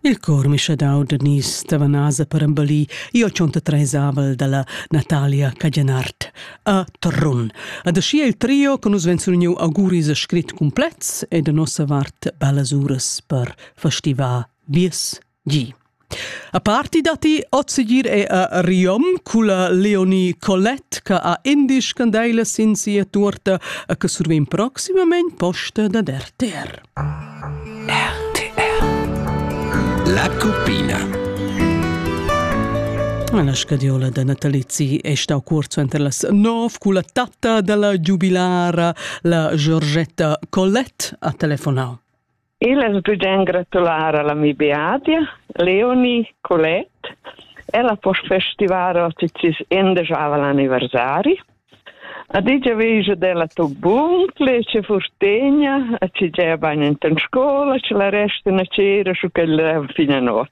Il cor mischadau da nies Tavanasa per embellir io tschonta treisavel dalla Natalia Cajanart a Trun. Ad aschia il trio che nus ven surniu auguris a scrit complets e da nossa vart bellas uras per festivar vies Gi. A parti datti ozzeggir è a Riom culla Leonie Colette che ha indisch candeila sin sia tuorta e che survegn proximament posta dad RTR. RTR La Cuppina La scadiola da natalizi è stau cuort suenter las nov cu la tatta dalla giubilara, la Giorgetta Colette, ha telefonau. Il es bugien gratular alla mi Beadia, Leonie, Colette, e la post-festivaro ticis endejaval anniversari. A digia veja della tobun, plece furtegna, a ci gea bagn enten scola, ci la resta na cera su quella fina not.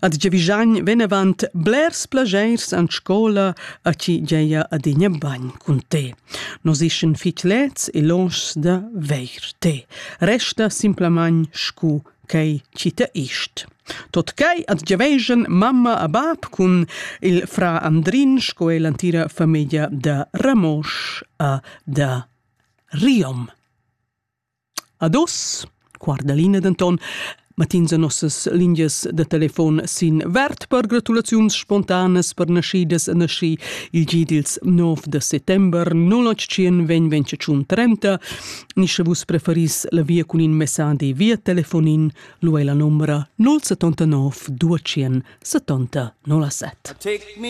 Ad giavigagn venevant blers plageers an scola a chi geia adegna bagn cun te. Nos ischan fich lets e lonschs da veir te. Resta simplamain scu quai chi te ist. Tot quai ad giavegian mamma a bab cun il fra Andrin sco e l'antira famiglia da Ramosch a da Riom. Ad uss, guarda Lina denton, mett'ins a nossas lingias da telefon sin verd per gratulaziuns spontanas per naschidas e naschi il gi dils nov da settember 081 20 30 ni sche vus preferis la via cun in messadi via telefonin, lu ei la numera 079 270 07. Take me